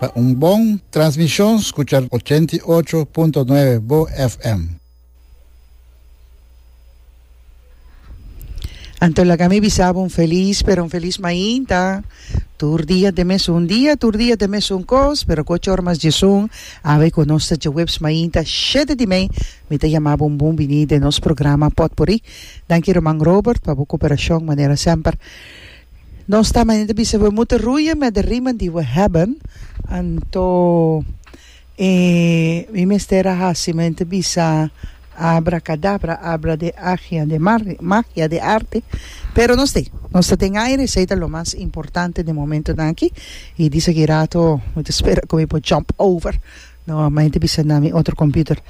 Pa un bon transmishon skucha ochenta i ocho punto nuebe Bo FM. Anto laga mi bisa bo un felis, pero un felis mainta. Tur dia ta e mesun dia, tur dia ta e mesun kos, pero ku ocho ora mas diesun, awe ku nos ta dje webs mainta shete di mei, mi ta yama bo un bon bini den nos programa Potpourri. Danki ruman Robert pa bo koperashon manera semper. Nos ta manera ta bisa, we moeten roeien met de riemen die we hebben. Anto e mi mester a hasi manera ta bisa abracadabra, abra de agia de magia de arte, pero nos te, nos ta den aire esey ta lo mas importante den momentonan aki y di esaki rato mi ta spera cu mi por jump over no manera ta bisa na mi otro computer.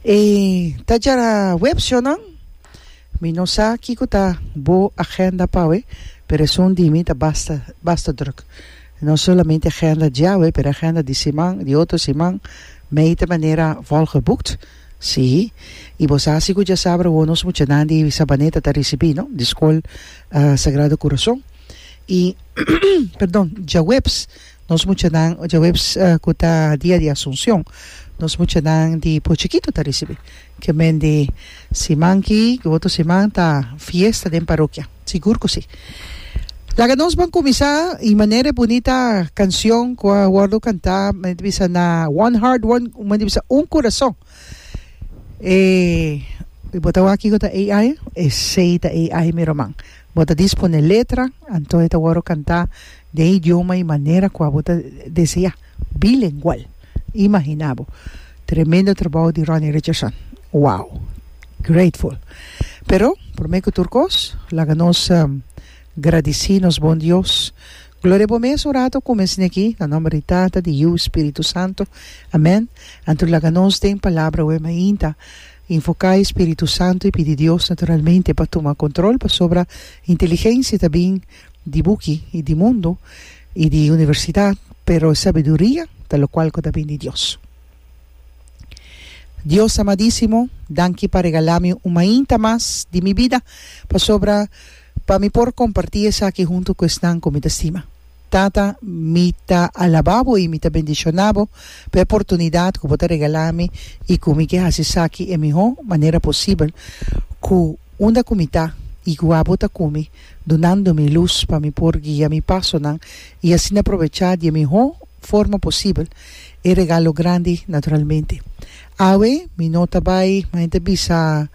E ta djara web sionan? Mi no sa kiko ta bo agenda pa awe, pero esun di mi ta basta basta druk. No solamente agenda di awe, pero agenda di siman, di otro siman, mei ta manera volgeboekt. Sí, i bo sa si ku dja sabra awor nos muchanan di Sabaneta ta risibí, no? Di Skol Sagrado Corazon. I, perdon, djaweps. Nos muchanan djaweps cu ta Dia di Asuncion, nos muchanan di por chikito ta ricibi. Ke men di siman ki cu otro siman ta fiesta den parokia. Sigur cu si. Laga nos ban cuminsa y manera e bunita cancion cu a wordo canta men ta bisa na one heart one men ta bisa un curason. E bo ta wak kico ta AI? Esey ta AI mi ruman. Bo ta disponé letra, anto e ta wòrdu kantá den idioma i manera kua bo ta deseá, bilengual. Imaginá bo! Tremendo trabou di Ronnie Richardson. Wow! Grateful! Pero, promé ku tur kos, laga nos gradisí nos bon Dios. Gloria Bo mes un ratu ku mes niki, na nòmber di Tata, di Yu i Spiritu Santu. Amèn. Anto laga nos den Palabra Wema Inta. Invoká e Spiritu Santu i pidi Dios naturalmente pa tuma kontrol pasobra inteligensia ta bin di buki i di mundu i di universidat pero e sabiduria ta lokual ku ta bin di Dios. Dios amadísimo, danki pa regalá mi un mainta mas di mi bida pasobra pa mi por kompartí esaki huntu ku esnan ku mi ta stima. Tata, mi ta alabá bo i mi ta bendishoná bo pa e portunidat ku bo ta regalá mi i ku mi ke hasi esaki e mihó manera posibel, ku unda ku mi ta i ku abo ta ku mi, dunando mi lus pa mi por guia mi pasonan i asina probechá di e mihó forma posibel e regalo grandi naturalmente. Awe mi no ta bai, ma e ta bisa.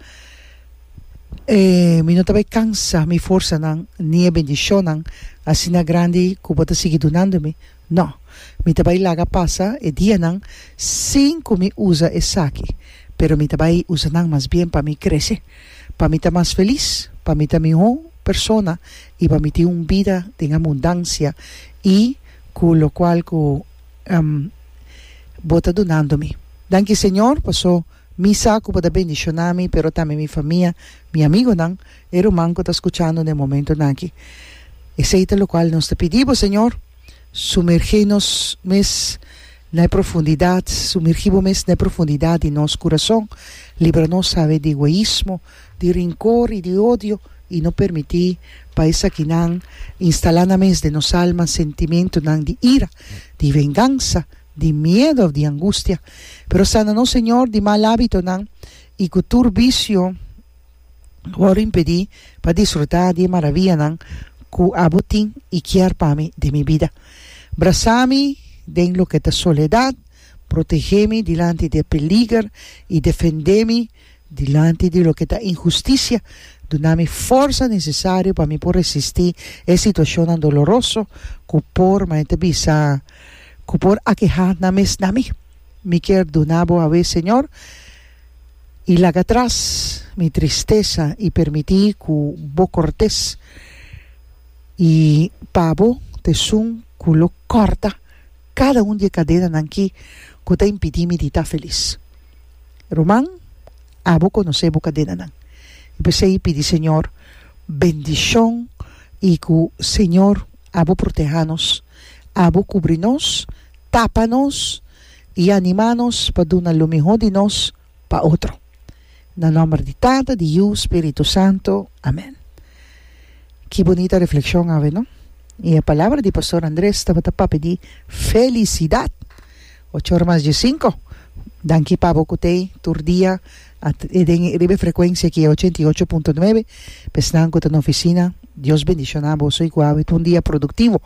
E mi no ta bai kansa mi forsanan, ni e bendishonnan asina grandi ku bo ta sigui dunando mi. No, mi ta bai laga pasa e dianan sin ku mi usa esaki, pero mi ta bai usa nan mas bien pa mi krese, pa mi ta mas felis, pa mi ta mihó persona i pa mi tin un bida den abundansia i ku lokual ku bo ta dunando mi. Danki, Señor, paso. Mi sa ku bo ta bendishoná mi, pero tambe mi famia, mi amigonan, e ruman ku ta skuchando den momentonan aki. Esei ta lokual nos ta pidi bo, Señor. Sumergé nos mes na e profundidat, sumergí bo mes na e profundidat di nos kurason. Libra nos, Sabe, di egoismo, di rinkor i di odio, i no permití pa esakinan instalá nan mes den nos alma sentimentunan di ira, di vengansa, di miedu of di angustia, pero sana nos, Señor, di mal hábitonan i ku tur visio ku wòrdu impedí pa disfrutá di e maravianan ku abo tin i kier pa mi den mi bida. Brasá mi den loke ta soledat, protegé mi dilanti di e peliger i defendé mi. Dilanti di loke ta inhustisia, duna mi forsa nesesario pa mi por resisti e situashonnan doloroso ku por, mane ta bisa, ku por akehá nan mes na mi. Mi kier duna Bo awe, Señor, i laga atras mi tristesa i permití ku Bo kòrtes i pabo t'esun ku lo kòrta. Kada un di e kadenanan ki ku ta impidí mi di ta felis. Ruman, abo konosé bo kadenanan. I p'esei pidi Señor bendishon i ku Señor abo protehá nos, abo kubri nos, tapa nos i animá nos pa duna lo mihó di nos pa otro. Na nomber di Tata, di Yu, Spiritu Santo. Amen. Ki bunita reflekshon awe no? I e palabra di Pastor Andres tabata papia di felisidat. Ochor mas dje sinku. Danki pabo ku t'e tur dia a den riba e frekuensia aki e ochenta i ocho punto nuebe. Pa esnan ku ta na ofisina Dios bendishona boso i ku a wet un dia produktivo.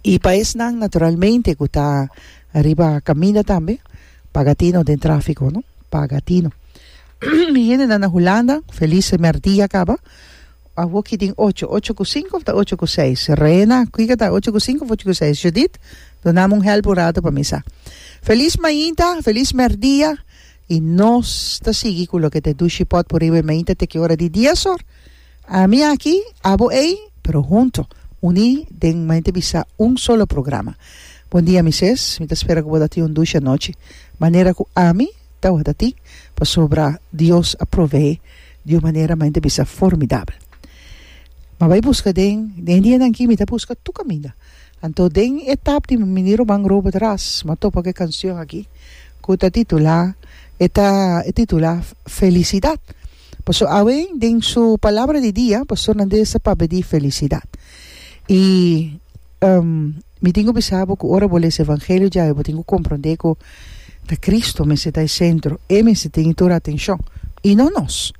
I pa esnan naturalmente ku ta riba kaminda tambe. Paga tino den trafiko no paga tino mi hende nan na Hulanda felis primer dia kaba a woki den ocho ocho ku sinku of ta ocho ku seis Reina kiko ta ocho ku sinku of ocho ku seis Judith dunami un hèlp un ratu pa mi sa felis mainta felis primer dia i nos ta sigui ku loke ta e dushi pòt por riba e mainta te ki ora di dies or Ami aki, abo ei, pero hunto, uní den mente bisa un solo programa. Bon dia Mises, mi ta spera ku bo ta tin un dushe anochi, manera ku ami tabata tin, pasobra Dios a provee di un manera mente bisa formidabel. Mi a bai buska den, den e dianan aki mi ta buska tur kaminda, anto den e tap di Mini Roman Robert Ras mi a topa ku e kanshon aki ku ta titulá, e ta titulá Felisidad. Paso awen den su palabra di dia pastor Nandez a pabedi felicidad y um mi tin cu bisa bo cu ora bo lesa evangelio djawe bo tin cu compronde cu ta Cristo mester ta e centro e mester tin tur atencion y no nos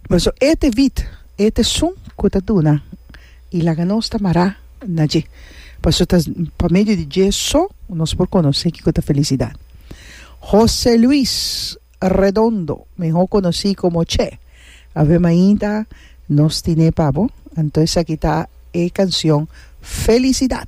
paso e ta e vid e ta e sun cu ta duna y laga nos ta mara na dje paso ta pa medio di dje so nos por conoce kico ta felicidad Jose Luis. Redondo, mihó konosí komo Che. Ave mainta nos tin'é pa bo. Anto esaki ta e kansion Felisidad.